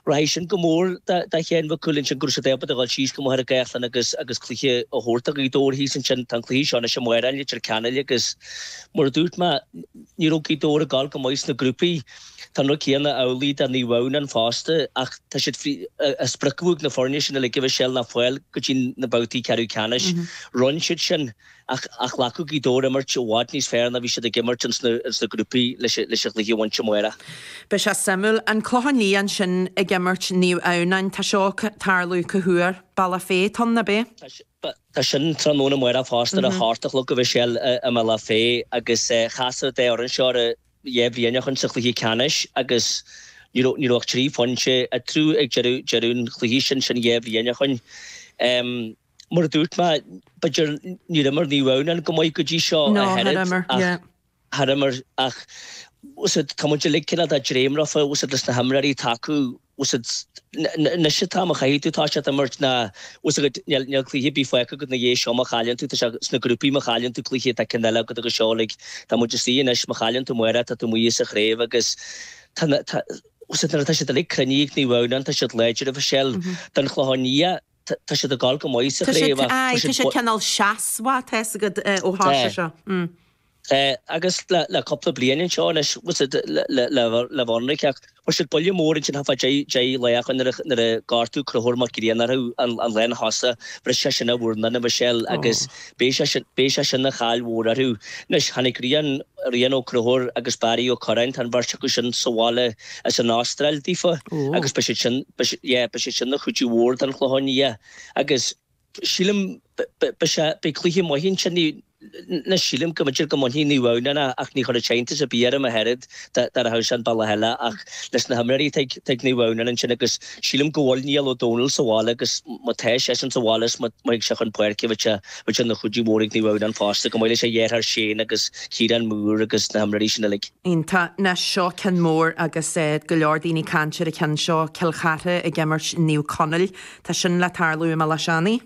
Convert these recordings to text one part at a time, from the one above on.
Rachaidh sin go mór do Sheán Mac Cumhaill ansin, go raibh siad ábalta a dhul síos go Machaire Gathlán agus agus cluiche a thabhairt do Ghaoth Dobhair thíos ansin. Tá an cluiche seo anois amárach i Leitir Ceanainn agus mar a dúirt mé, ní raibh Gaoth Dobhair ag dul go maith sna grúpaí. Tá an rud céanna amhlaidh do Naomh Adhamhnáin fosta ach tá a fhios agat, an sprioc ag na foirne sin uilig, a Mhichelle, ná fáil go dtí na babhtaí ceathrú ceannais. Rinn siad sin. Ach caithfidh Gaoth Dobhair imirt i bhfad níos fearr ná a bhí siad ag imirt insna grúpaí leis an chluiche a bhaint amárach. Beidh sé suimiúil. An Clochán Liath ansin ag imirt Naomh Adhamhnáin, tá seo ag tarlú cá huair? Bealach Féich, tá, nach b'é? Tá sin tráthnóna amárach fosta, ar a hocht a chlog a bheidh sé i mBealach Féich agus chas an dá fhoireann seo ar dhá bhliain ó shoin insa chluiche ceannais agus ní raibh ach trí phointe eatarthu ag deireadh an chluiche sin, sin dhá bhliain ó shoin. Mar a dúirt mé, b'fhéidir, níor imir Naomh Adhamhnáin go maith go dtí seo No, ach oiread, níor imir, ach, yeah. Níor imir, ach, fhios agat, tá muid uilig cineál ag dréim leofa, fhios agat, leis na himreoirí atá acu, fhios agat, anois an t-am a chaithfidh tú, tá a fhios agat, imirt nó, fhios agat, níl, níl cluiche ar bith fágtha agat ina dhiaidh seo má chailleann tú, tá a fhios agat, sna grúpaí má chailleann tú cluiche tá ceann eile agat agus seo uilig, tá muid istigh anois, má chailleann tú amárach tá tú amuigh as an chraobh agus tá na, tá, fhios agat, nuair atá siad uilig cruinnithe ag Naomh Adhamhnáin, tá siad láidir, a Mhichelle, don Chlochán Liath, Tá siad ag gol go maith sa chraobh ach tá siad buíoch. Tá siad cineál seasmhach, tá a fhios agat ó thosach sé seo. Agus le cúpla bliain anseo anois, le Vonraigh, ach fuair siad buille mór ansin thart fá dheich lá ó shoin nuair a gortaíodh Conchúr Mac Grianna orthu an lántosaí. Bhris seisean a mhurnán, a Mhichelle, agus Beidh sé sin ina chaill mhór orthu. Anois, tháinig Rian, Rian Ó Conchúir agus Barry Ó Curráin, tá an bheirt acu sin sa bhaile as an Astráil daofa agus beidh siad sin, yeah, beidh siad sin ina chuidiú mhór don Chlochán Liath agus sílim, beidh sé, beidh cluiche maith ansin, anois sílim go mb'fhéidir go mbainfidh Naomh Adhamhnáin é ach ní chuirfeadh sé iontas ar bith orm ach oiread. Dá rachadh sé an bealach eile ach leis na himreoirí atá ag Naomh Adhamhnáin ansin agus sílim go bhfuil Niall Ó Dónaill sa bhaile agus má tá seisean sa bhaile is má théann sé chun páirce beidh sé ina chuidiú mór ag Naomh Adhamhnáin fosta, chomh maith leis a dheartháir Shane agus Ciarán Moore agus na himreoirí sin uilig. Tá. Anois seo cionn mór agus go leor daoine ag caint ar an cheann seo, Cill Chartha ag imirt Naomh Conaill. Tá sin le tarlú i mBaile Átha Seanaidh.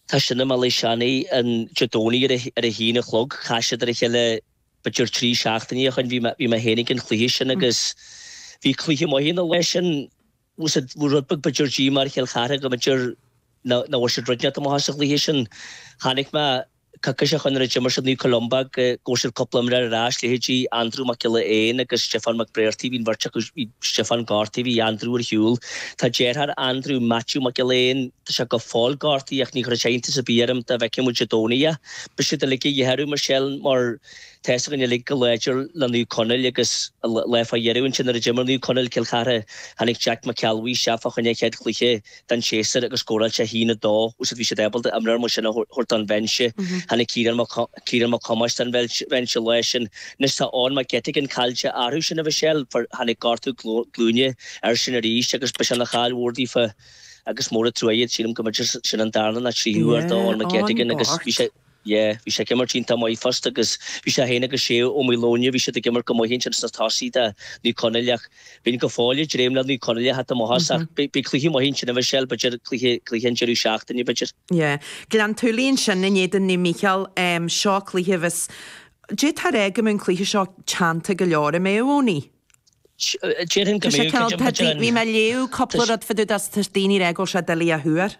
Tá sin i mBaile Átha Seanaidh an Dé Domhnaigh ar a haon a chlog. Chas siad ar a chéile. b'fhéidir trí seachtainí ó shoin, bhí mé féin ag an chluiche sin agus bhí cluiche maith ann an lá sin, bhuel bhí rud beag b'fhéidir díomá ar Chill Charthaigh go mb'fhéidir nach bhfuair siad rud inteacht amach as an chluiche sin. Chonaic mé coicís ó shoin nuair a d'imir siad in aghaidh Naomh Columba go bhfuair siad cúpla imreoir ar ais, leithéidí Aindriú Mac Giolla Éin agus Stiofán Mac Bréartaigh, bhí an bheirt acu, bhí Stiofán gortaithe, bhí Aindriú ar shiúl. Tá deartháir Aindriú, Maitiú Mac Giolla Éin, tá sé go fóill gortaithe ach ní chuirfeadh sé iontas ar bith orm dá bhfeicfeadh muid Dé Domhnaigh é. Beidh siad uilig a dhíth orthu, a Mhichelle, mar tá fhios againn uilig chomh láidir le Naomh Conaill agus lá fá dheireadh ansin nuair a d'imir Naomh Conaill, Cill Chartha, tháinig Jack Mac Ceallabhuí isteach fá choinne a chéad chluiche den séasúr agus scóráil sé a haon a dó agus bhí siad ábalta imreoir mar sin a thabhairt don bhinse. Tháinig Ciarán Mac, Ciarán Mac Thomáis don bhinse lá sin. Anois tá Eoghan McGettigan caillte orthu ansin a Mhichelle, tháinig gortú glúine air sin arís agus beidh sé ina chaill mhór daofa. agus mór an truaighe, sílim go mb'fhéidir gur sin an darna nó tríú uair dó, McGettigan, agus bhí sé, yeah, bhí sé ag imirt iontach maith fosta agus bhí sé féin agus Shea Ó Maoileoin, bhí siad ag imirt go maith ansin sna tosaí do Naomh Conaill ach bheinn go fóill ag dréim le Naomh Conaill a theacht amach as ach beidh cluiche maith ansin, a Mhichelle, b'fhéidir cluiche, cluiche an deireadh seachtaine, b'fhéidir. Yeah, Gleann tSúilí ansin in éadan Naomh Mícheál, seo cluiche a bheas, d'fhéadfá a rá go mbeidh an cluiche seo teannta go leor, an mbeidh, Owenie? Tá sé cineál dodgy. Bhí mé ag léamh cúpla rud fá dtaobh dó, tá daoine ag rá go bhfuil sé doiligh a thuar.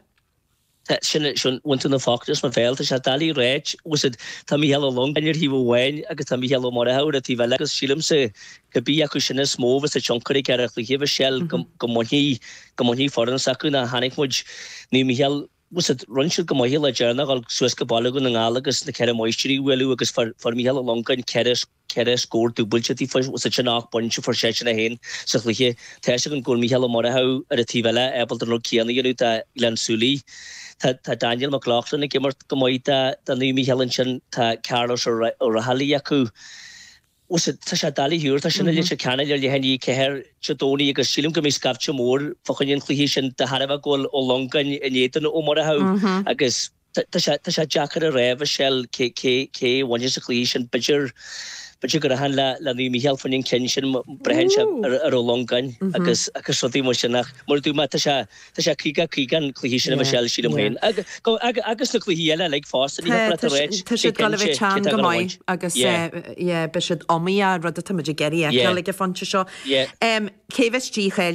Tá, sin é, bhain tú na focla as mo bhéal, tá sé doiligh a ráit, agus tá Mícheál Ó Longáin ar thaobh amháin agus tá Mícheál Ó Murchú ar an taobh eile agus sílimse cé bith acu sin is mó a bheas ag tionchar ag an chluiche a Mhichelle, go mbainfidh, go mbainfidh foireann s'acu chonaic muid Naomh Mícheál, rinne siad go maith lá deireanach dhul suas go Baile Dhún na nGall agus na Ceithre Máistrí a bhualadh agus fuair Mícheál Ó Longáin ceithre ceithre scór dúbailte taobh thiar de sin ocht bpointe a fuair seisean é féin sa chluiche. Tá a fhios againn go bhfuil Mícheál Ó Murchú ar an taobh eile ábalta an rud céanna a dhéanamh do Ghleann tSúilí. Tá Daniel McLaughlin ag imirt go maith do Naomh Mícheál ansin, tá Carlos Ó Raghallaigh acu. Tá sé doiligh a thuar, tá sin i Leitir Ceanainn ar leath i ndiaidh a ceathair Dé Domhnaigh agus sílim go mbeidh scaifte mór fá choinne an chluiche sin de thairbhe go bhfuil Ó Longáin in éadan Ó Murchú agus Tá sé deacair a rá, a Mhichelle, cé a bhainfeas an cluiche sin? B'fhéidir go rachainn le Naomh Mícheál fá choinne an chinn sin, braitheann sé ar Ó Longáin agus rudaí mar sin ach mar a dúirt mé, tá sé 50 50 an cluiche sin a Mhichelle, sílim féin. Agus na cluichí eile uilig fosta, ní thiocfadh leat a ráit go cinnte cé atá ag gabháil a bhaint. Agus beidh siad iomaíoch, rud atá muid ag iarraidh fheiceáil ag an phointe seo. Cé a bheas dícháilithe?